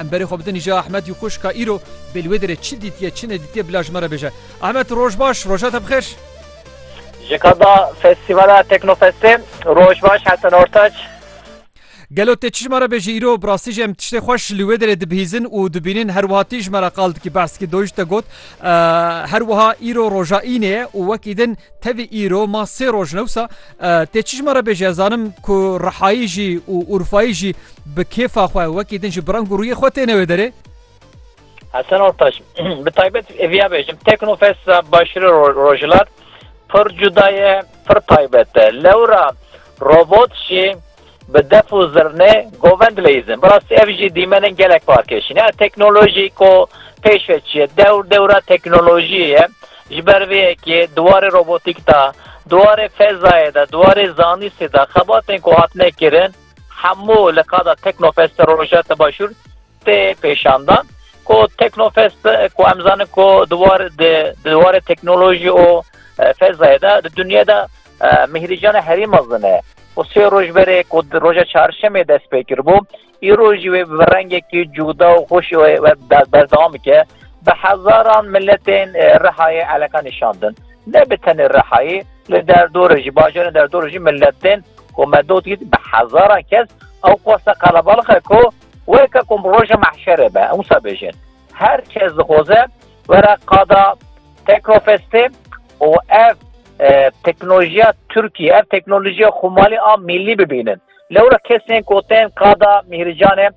Em berê xwe bidin îja Ahmed û xwişk ka îro bê li wê derê çi dîtiye çi nedîtiye bila ji me re bêje. Ahmed roj baş, roja te bixêr. Ji qada festîvala Teknofestê roj baş Hesen Ortaç. Gelo tê çi ji me re bêjî îro bi rastî jî em tiştê xweş li wê derê dibihîzin û dibînin her wiha tî ji me re qal dikî behs dikî doyîş te got her wiha îro roja înê ye û wekî din tevî îro ma sê roj ne wisa Tê çijma re bêje ez zanim ku Rihayî jî û Urfayî jî bi kêfa xwe wekî din ji brang û rûyê xwe têne wê derê. Hesen Ortaş, bi taybet viya bêjim Teknofesta Başirê Rojhilat pir cuda ye, pir taybet e. Lewra robot jî Bi def û zirnê govend leyîzin. Bi rastî ev jî dîmenên gelek parkêşî ne. Teknolojî ku pêş ve çi ye? Dewr dewra teknolojiyê ye. Ji ber vê yekê di warê robotîk de, di warê fezayê de, di warê zanistê de xebatên ku hatine kirin hemû li qada Teknofesta Rojhilata Başûr tê pêşandan. Ku Teknofest ku em zanin ku di warê teknolojî û fezayê de di dinyayê de Mîhrîcana herî mezin e û sê roj berê ku di roja çarşemê dest pê kiribû, îro jî wê bi rengekî cûda û xweş berdewam bike. Bi hezaran miletên Rihayê eleka nîşandin. Ne bi tenê Rihayê, li derdorê jî, bajarên derdorê jî milet tên ku me dotî bi hezaran kes ew qasa qelebalix e ku weke ku roja mehşerê be, wisa bêjin. Her kes dixwaze were qada Tekrofestê û ev teknolojiya Tirkî, ev teknolojiya xwemalî a mîllî bibînin. Lewra kesên ku tên qada Mîhricanê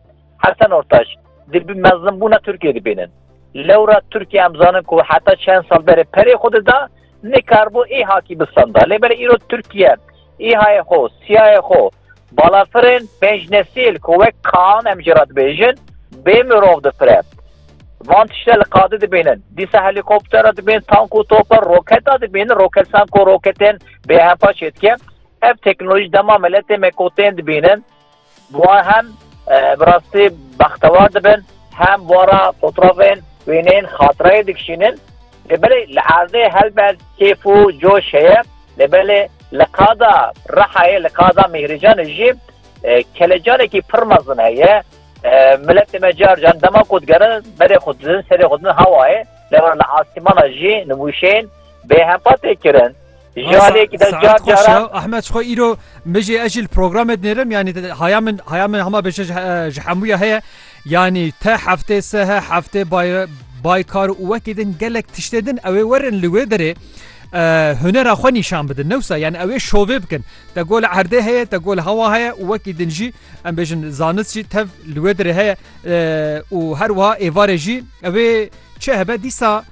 Hesen Ortaç di mezinbûna Tirkiyê dibînin. Lewra Tirkiye em zanin ku heta çend sal berê perê xwe dida, nikaribû îhakî bistanda. Lê belê îro Tirkiye îhayê xwe, siyayê xwe, Balafirên pênc nesîl ku wek Kaan em jê re dibêjin bê mirov difire. Van tişte li qadê dibînin. Dîsa helîkoptera dibîn, tank û topa, roketa dibînin, roketsan ku roketên bêhepa çêdike. Ev teknolojî dema miletê me ku tên dibînin bi wan hem bi rastî bextewar dibin hem wara fotrafên wêneyên xatireyê dikişînin. Lê belê li erdê helbet kêf û coş heye, lê belê li qada Rihayê, li qada Mîhrîcanê jî kelecanekî pir mezin heye. Miletê me car car dema ku digerin berê xwe didin, serê xwe didin hewayê, lê were li asîmana jî nivûşeyên bêhempa tê kirin. Jalek da car cara Ahmet xwe îro mijê ez jî li programê dinêrim yanî haya min haya min hema bêje ji hemûya heye yanî te heftê se he heftê baykar û wekê din gelek tiştê din ew ê werin li wê derê hunera xwe nîşan bidin newsa yan ew ê şovê bikin te gol erdê heye te gol hewa heye û wekî din jî em bêjin zanist jî tev li wê derê heye û her wiha êvarê jî ew ê çi hebe dîsa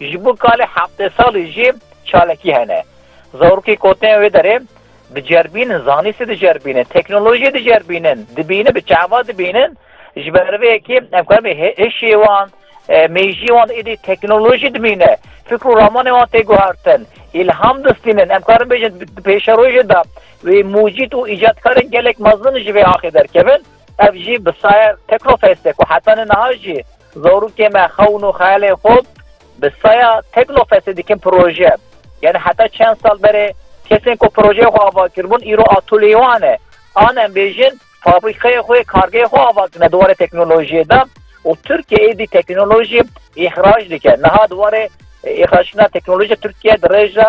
Ji bo kalê heftê salî jî çalakî hene. Zarokê ku tên wê derê diceribînin, zanîstî diceribînin, teknolojî diceribînin, dibînin, bi çavan dibînin. Ji ber vê yekê em karin bê hişê wan, mêjiyê wan êdî teknolojî dimîne. Fikr û ramanên wan tê guhertin, îlham distînin. Em karin bêjin di pêşerojê de wê mûcîd û îcatkarên gelek mezin ji vê axê derkevin. Ev jî bi saye Teknofestê ku heta niha jî, Zarokê me xewn û xeyalên xwe bi saya Teknofestê dikin proje. Yani heta çend sal berê kesên ku projeyê xwe ava kiribûn îro atoleyê wan e. An em bêjin fabrîkeyê xwe, kargeyê xwe ava kirine di warê teknolojiyê de û Tirkiye êdî teknolojî îxrac dike. Niha di warê îxrackirinê teknolojî Tirkiye di rêj de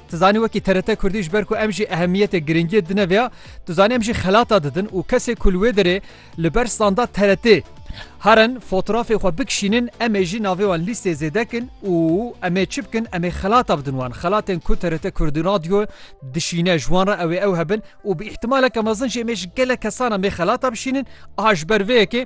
Tu zanî wekî TRT Kurdî ji ber ku em jî ehemiyetê girîngiyê dine vêya, tu zanî em jî xelata didin û kesê ku li wê derê li ber standa TRT'ê herin fotrafê xwe bikişînin em ê jî navê wan lîstê zêde kin û em ê çi bikin em ê xelata bidin wan. Xelatên ku TRT Kurdî Radio dişîne ji wan re ew ê ew hebin û bi îhtimaleke mezin jî em ê ji gelek kesan em ê xelata bişînin a ji ber vê yekê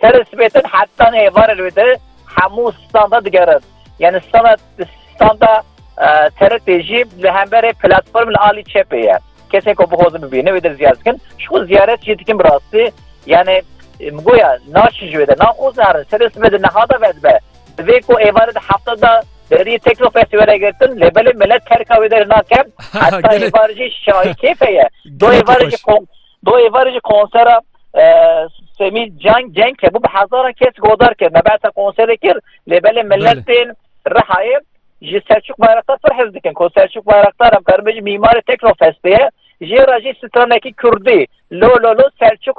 Serê sibê din heta nê êvarê li wê de hemû standa digerin. Yanî standa standa TRT'ê jî li hemberê platform li alî çepê ye. Kesên ku bixwazin bibînin wê de ziyaret dikin. Ji xwe ziyaret jî dikin bi rastî. Yanî min got ya naçin ji wê de naxwazin herin. Serê sibê din niha da vedibe. Divê ku êvarê di hefta da deriyê tekno festî were girtin lê belê milet terka wê derê nake. Heta êvarê jî şayê kêfe ye. Duh êvarê jî Do êvarê jî konsera Semî Can Cenk hebû bi hezaran kes godar kir. Me behsa konserê kir lê belê millet tên Rihayê ji Selçuk Bayraktar pir hez dikin ku Selçuk Bayraktar em karin bêjin mîmarê Teknofestê ye. Jê re jî stranekî Kurdî Lo Lo Lo Selçuk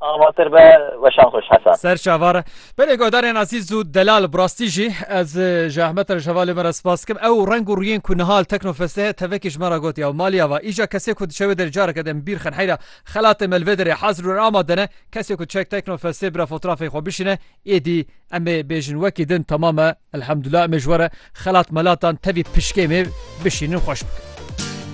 Avatir be weşan xweş Hesan. Ser çavar e. Belê guhdarên ezîz û delal bi rastî jî ez ji Ahmet re ji hevalê me re spas dikim. Ew reng û rûyên ku niha li Teknofestê heye tevekî ji me re gotiye û malî ava, îja kesê ku diçe wê derê careke din bîr xin heyra xelatê me li vê derê hazir û amade ne. Kesê ku diçe Teknofestê bira fotrafeyê xwe bişîne êdî em ê bêjin wekî din temam e. Elhamdullah em ê ji we re xelat melatan tevî pişkê me bişînin xweş bikin.